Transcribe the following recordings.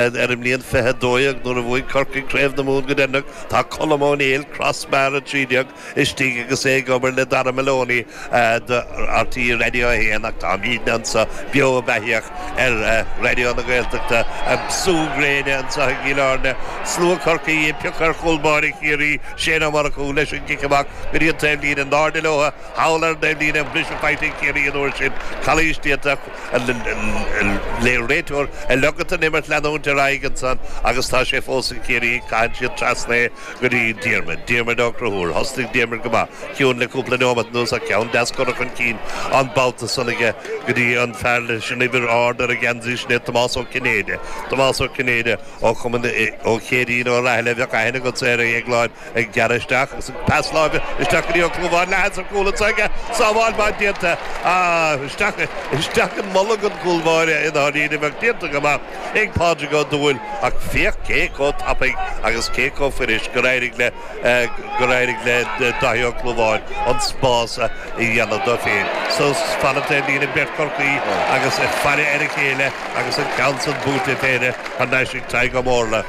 Ar an mbliain fiche a dó dhéag, nuair a bhuaigh Corcaigh Craobh na Mumhan go deireanach, tá Colm Ó Néill, Crossbar 13, istigh agus é ag obair le Dara Maloney do RTÉ Raidió 1 ach táimidne anseo beo beathaíoch ar Raidió na Gaeltachta, an sú gréine anseo i gCill Airne, slua Chorcaí ag piocadh ar chúl báire Chiarraí, Shane Ó Murchú, leis an gcic amach go dtí an taobhlíne, in airde leo thall ar an dtaobhlíne an bhris faighte ag Ciarraí an uair sin, calaois déanta. an réiteoir ag ligint don imirt leanúint ar aghaidh ansan agus tá sé fós ag Ciarraí, caitheann siad trasna é go dtí Diarmuid, Diarmuid Ó Conchúir, thosnaigh Diarmuid go maith, ciúin le cúpla neomat anuas ach ceann deas curtha chun cinn an babhta san aige go dtí an fear leis an uimhir ard ar an gheansaí sin é Tomás Ó Cinnéide, Tomás Ó Cinnéide ó chumann Ó Céirín Ó Rathaille a bheadh aithne agatsa air a Dhéagláin. Ag gearradh isteach agus an pas láimhe isteach go dtí Ó Clúmháin, leathsheans cúil anso aige, sábháil maith déanta ach isteach, isteach i mbolg an chúl báire i ndáiríre ach déanta go maith ag Pádraig Ó Dúill ach féach cé chomh tapaidh agus cé chomh fuirisc gur éirigh le, gur éirigh le Dáithí Ó Clúmháin an spás a dhéanamh dó féin. Suas fan na taobhlíne beirt Chorcaíoch agus ag faire ar a chéile agus an ceann san buaite ag péire thar n-ais ag Tadhg Ó Mórla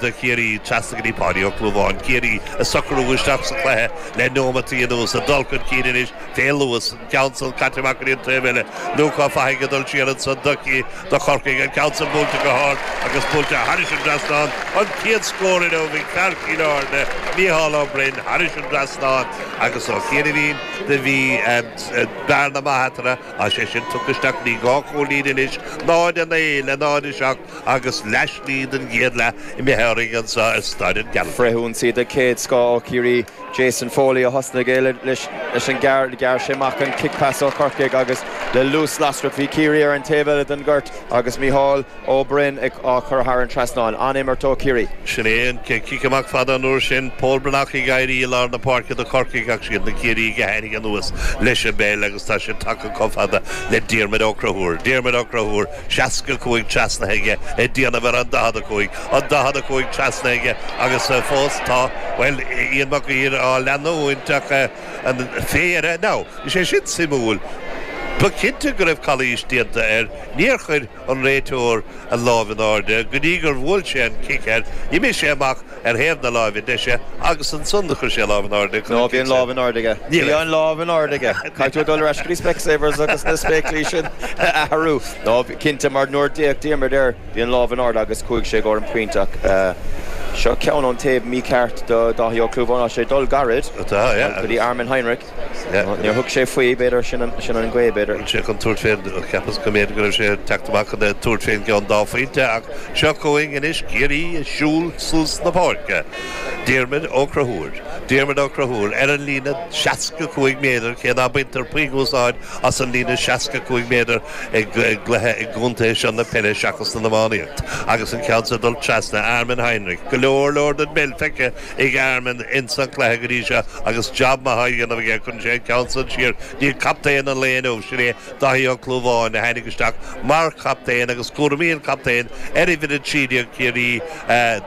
do Chiarraí. Go dtí Páidí Ó Clúmháin Ciarraí ag socrú isteach sa chluiche le neomataí anuas. Ag dul chun cinn anois fé luas. An ceann san caite amach go dtí an taobh eile. Lúcás Ó Fathaigh ag dul siar ansan do Chorc, do Chorcaigh? An ceann san buailte go hard agus buailte thairis an trasnán. An chéad scór inniu ag fear Chill Airne, Micheál Ó Broin, thairis an trasnán agus ó chianaibhín do bhí bearna maith eatarthu. Tá sé sin tugtha isteach go dtí dhá chúilín anois. 0-9 le 0-7. Agus leathshlí den gcéad leath imithe orainn anseo i Staid an Ghearaltaigh. Frithionsaí de chéad scoth ó Chiarraí, Jason Foley, a thosnaigh é leis an, ghearr sé amach an cic pas ó Chorcaigh agus le luas lasrach bhí Ciarraí ar an taobh eile den ghort agus Micheál Ó Broin á chur thar an trasnán. An-imirt ó Chiarraí. Sin é an chéad chic amach fada an uair sin, Pól Breathnach ag éirí i lár na páirce do Chorcaigh ach siad na Ciarraígh a tháinig anuas leis an bpeil agus tá sé tagtha chomh fada le Diarmaid Ó Conchúir. Diarmaid Ó Conchúir. 65 trasnaithe aige, ag déanamh ar an 45, an 45 trasnaithe aige agus fós tá, bhuel, Ian Mac Uidhir á leanúint ach an phéire, now, tá sé sin suimiúil, ba chinnte go raibh calaois déanta air, níor chuir an réiteoir an lámh in airde go dtí gur bhuail sé an cic air, d'imigh sé amach ar thaobh na láimhe deise agus ansan do chuir sé a lámh in airde ag cur an cinn sin. No, bhí an lámh in airde aige. Bhí an lámh in airde aige. Caithfidh tú a dhul ar ais go dtí Specsavers agus na spéaclaí sin a athrú. No, bhí cinnte mar nuair a d'fhéach Diarmuid air bhí an lámh in airde agus chuaigh sé i gcomhair an phointe ach seo ceann ón taobh mícheart do Dháithí Ó Clúmháin. Tá sé ag dul gairid go dtí Armin Heinrich. Níor thug sé faoi, b'fhéidir, sin an ghaoth, b'fhéidir. Bhí sé chun tabhairt fén, cheapas go mb'fhéidir go raibh sé ag teacht amach chun tabhairt fén gceann dá phointe ach seo chugainn anois Ciarraí ag siúl suas na páirce, Diarmaid Ó Conchúir, Diarmaid Ó Conchúir ar an líne seasca cúig méadar, cé ná baintear puinn úsáid as an líne seasca cúig méadar i gcluiche i gcontae seo na peile seachas san iománaíocht, agus an ceann seo ag dul trasna, Armin Heinrich, go leor leor den bpeil feicthe, ag Armin ins an cluiche go dtí seo agus job maith á dhéanamh aige. Cuireann sé an ceann san siar go dtí captaen an lae inniu, sin é Dáithí Ó Clúmháin, a tháinig isteach mar chaptaen agus cúraimí an chaptaen ar uimhir 13 Chiarraí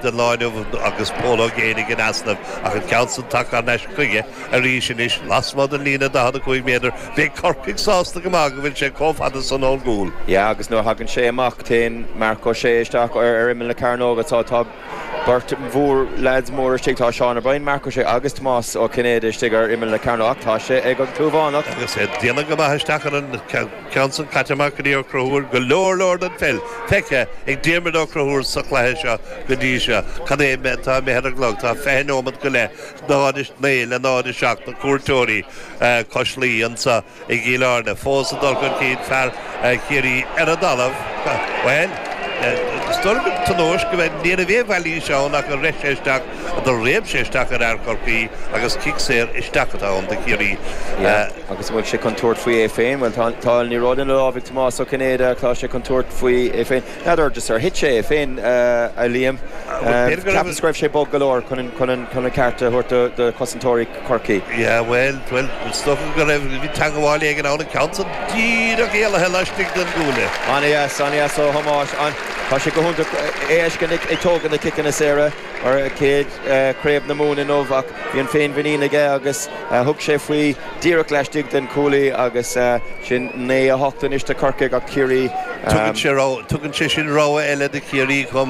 don lá inniu agus Pól Ó Géibheannaigh in easnamh. Ach an ceann san tagtha thar n-ais chuige arís anois lasmuigh den líne 45 méadar. Beidh Corcaigh sásta go maith go bhfuil sé chomh fada san ón gcúl. Yeah agus nuair a thagann sé amach téann Marc Ó Sé isteach ar imeall na cearnóige so tá Beirt mhór leaids móra istigh, tá Seán Ó Briain, Marc Ó Sé agus Tomás Ó Cinnéide istigh ar imeall na Cearnóg ach tá sé ag an gClúmhánach. Agus é déanach go maith isteach ar an gceann san, caite amach go dtí Ó Conchúir, go leor leor den pheil feicthe ag Diarmuid Ó Conchúir sa chluiche seo go dtí seo. Cad é an méid atá imithe ar an gclog, tá fiche neomat go leith, 0-9 le 0-7 na cuairteoirí cois Laoi anseo. I gCill Airne, fós ag dul chun cinn fear Chiarraí ar an dtalamh. Bhuel, is dóigh liom tionóisc ab ea é, ní raibh aon mhailís ann ach rith sé isteach, do réab sé isteach ar fhear Chorcaí agus cic saor isteach atá ann do Chiarraí. Agus an bhfuil sé chun tabhairt faoi é féin? Bhuel, tá an liathróid ina lámh ag Tomás Ó Cinnéide ach tá sé chun tabhairt faoi é féin. N'fheadar just ar thit sé é féin, a Liam. Ceapaim go raibh sé bog go leor chun an ceart a thabhairt do chosantóirí. Chorcaí. Yeah, bhuel, bhuel, is dócha go raibh, bhí teagmháil éigin ann ach an ceann díreach éalaithe laistigh den gcuaille. An-dheas, an-dheas ó Thomás. Tá sé go hiontach é a fheiscint ag tógaint na ciceanna saora mar chéad Chraobh na Mumhan inniu ach bhí an féinmhuinín aige agus thug sé faoi díreach laistigh den chuaille agus sin naoi a hocht anois do Chorcaigh ach Ciarraí Tugann sé sin rogha eile do Chiarraí chomh.